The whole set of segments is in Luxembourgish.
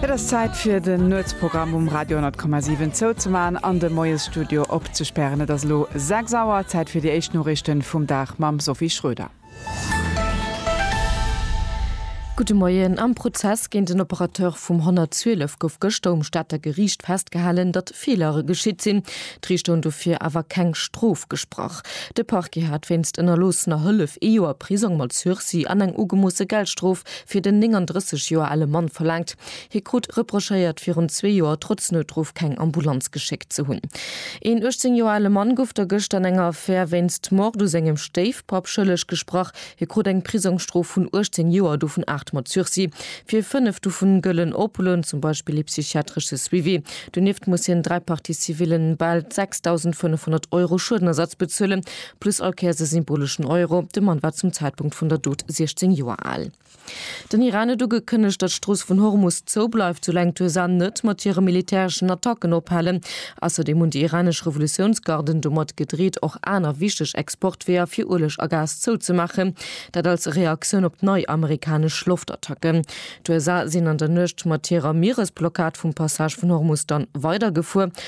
Et ass Zäit fir den Nuetsprogramm um Radio 10,7 zouzemaachen an de Moiesstudio opzespären. Et ass elo 6 Auer, Zäit fir déi éischt Noriichten vum Dag mam Sophie Schröder. Gudde Moien. Am Prozess géint den Operateur vum 112 gouf gëschter um Stater Geriicht festgehalen, datt Feelere geschitt sinn. D'Riichter hunn dofir awer keng Strof gesprach. De Parquet hat wéinst ënnerloossener Hëllef ee Joer Prisong mat Sursis an eng ugemoosse Geldstrof fir den 39 Joer ale Mann verlaangt. Hie krut reprochéiert, virun zwee Joer trotz Noutruff keng Ambulanz geschéckt ze hunn. Een 18 Joer ale Mann gouf da gëscht an enger Affär wéinst Mord u sengem Stéifpapp schëlleg gesprach. Hie krut eng Prisongsstrof vun 18 Joer, dovun aacht mat Sursis. Fir fënnef dovun gëll en Opulen, zum Beispill ee psychiatresche Suivi. Donieft muss hien dräi Parties civillen bal 6.500 Euro Schuedenersatz bezuelen. Plus all Kéiers e symboleschen Euro, de Mann war zum Zäitpunkt vun der Dot 16 Joer al. Den Iran huet ugekënnegt, datt d'Strooss vun Hormus zou bleift, soulaang d'USA net mat hire militäreschen Attacken ophalen. Ausserdeem hunn déi iranesch Revolutiounsgarden domat gedreet, och aner wichteg Exportweeër fir Ueleg a Gas zouzemaachen, dat als Reaktioun op nei amerikanesch Loftattacken. D'USA sinn an der Nuecht mat hirer Mieresblockad vum Passage vun Hormus dann weidergefuer,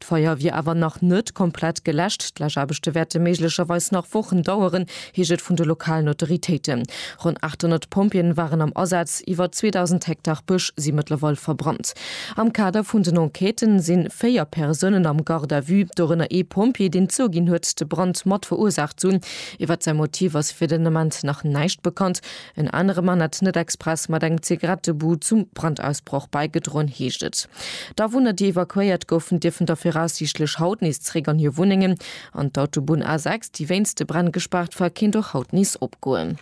D'Feier wier awer nach net komplett geläscht. D'Läschaarbechte wäerte méiglecherweis nach Wochen daueren, heescht et vun de lokalen Autoritéiten. Ronn 800 Pompjeeën waren am Asaz, iwwer 2.000 Hektar Bësch si mëttlerweil verbrannt. Am Kader vun den Enquêten si véier Persounen am Garde à vue, dorënner ee Pompjee, deen zouginn huet, de Brand mat verursaacht ze hunn. Iwwert säi Motiv ass fir den Ament nach näischt bekannt. En anere Mann hätt net express mat engem Zigarettebud zum Brandausbroch bäigedroen, heescht et. D'Awunner, déi evakuéiert goufen, dierfen da viraussiichtlech haut nees zeréck an hir Wunnengen. An d'Autobunn A6, déi wéinst de Bränn gespaart war, kéint och haut nees opgoen.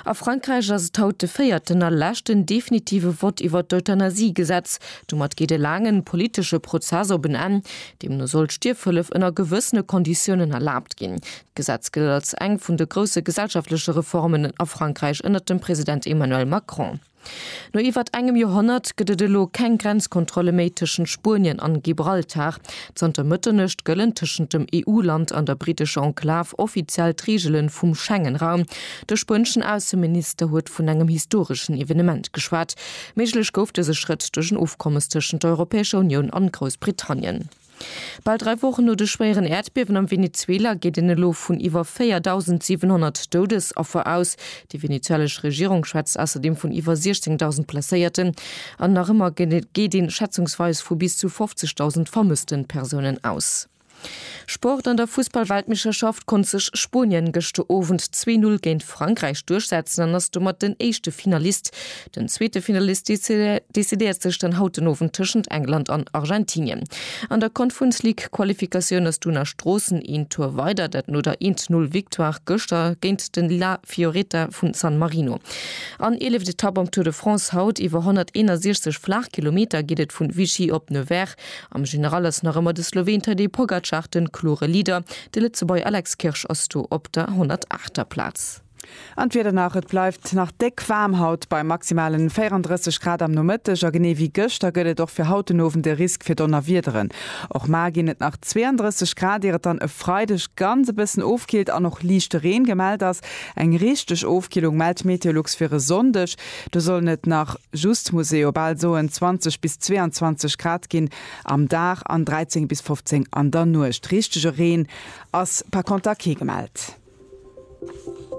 A Frankräich ass et haut de véierten a leschten definitive Vott iwwert d'Euthanasie-Gesetz. Domat geet e laangen politesche Prozess op en Enn. Deemno soll d'Stierfhëllef ënner gewëssene Konditiounen erlaabt ginn. D'Gesetz gëllt als eng vun de grousse gesellschaftleche Reformen a Frankräich ënnert dem President Emmanuel Macron. No iwwert engem Joerhonnert gëtt et elo keng Grenzkontrolle méi tëschent Spuenien an Gibraltar. Zanter Mëtternuecht gëllen tëschent dem EU-Land an der britescher Enklav offiziell d'Reegelen vum Schengen-Raum. De spueneschen Ausseminister huet vun engem historeschen Evenement geschwat. Méiglech gouf dëse Schrëtt duerch en Ofkommes tëschent der Europäescher Unioun an Groussbritannien. Bal dräi Wochen no de schwéieren Äerdbiewen am Venezuela geet een elo vun iwwer 4.700 Doudesaffer aus. Déi venezuelesch Regierung schwätzt ausserdeem vun iwwer 16.000 Blesséierten an nach ëmmer geet een schätzungsweis vu bis zu 50.000 vermësste Persounen aus. Sport, An der Fussballweltmeeschterschaft konnt sech Spuenien gëschter Owend zwee Null géint Frankräich duerchsetzen an ass domat den éischte Finalist Den zweete Finalist decidéiert sech dann haut den Owend tëschent England an Argentinien. An der Confunds League-Qualifikatioun ass d'Una Stroossen een Tour weider, dat no der 1 Null Victoire gëschter géint de La Fioretta vu San Marino. An eeleft Etapp am Tour de France haut. Iwwer 161 flaach Kilometer geet et vun Vichy op Nevers. Am General ass nach ëmmer de Sloween Tadej Pogacar den klore Leader. De Lëtzebuerger Alex Kirsch ass do op der 108. Plaz. An d'Wieder nach, Et bleift nach déck waarm haut bei maximalen 34 Grad am Nomëtteg a genee wéi gëschter gëtt et och fir haut den Owend e Risk fir Donnerwiederen. Och mar ginn et nach 32 Grad ier et dann e Freideg ganz e bëssen ofkillt an och liichte Reen gemellt ass. Eng richteg Ofkillung mellt Meteolux fir e Sonndeg, do sollen et nach just, muss ee jo bal soen, 20 bis 22 Grad ginn am Dag an 13 bis 15 an der Nuecht. Richtege Reen ass par conter kee gemellt.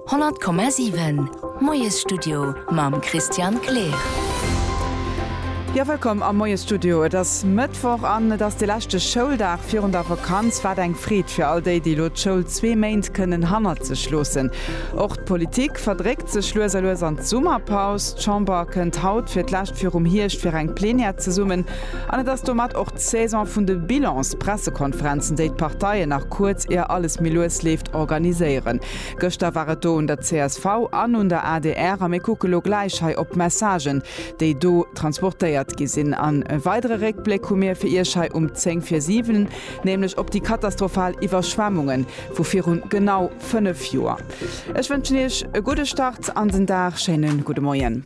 100,7 Moiesstudio mam Christian Kleer. Jo, wëllkomm am Moiesstudio. Et ass Mëttwoch an et ass de leschte Schouldag virun der Vakanz. Wat eng Freed fir all déi, déi elo d'Schoul zwee Méint kënnen hannert sech loossen. Och d'Politik verdréckt sech lues a lues an d'Summerpaus. D'Chamber kënnt haut fir d'lescht virum Hierscht fir eng Plenière zesummen an et ass domat och d'Saison vun de Bilans, Pressekonferenzen, déi d'Parteien nach kuerz ier alles méi lues leeft, organiséieren. Gëschter war et do un der csv an un der adr a mir kucke lo gläich hei op d'Messagen, déi do transportéiert gi sinn. An e weidere Réckbléck hu mir fir Iech hei um zéng vir siwen, nämlech op déi katastrophal Iwwerschwemmunge vu virun genau fënnef Joer. Ech wënschen Iech e gudde Start an den Dag. Schéine gudde Moien.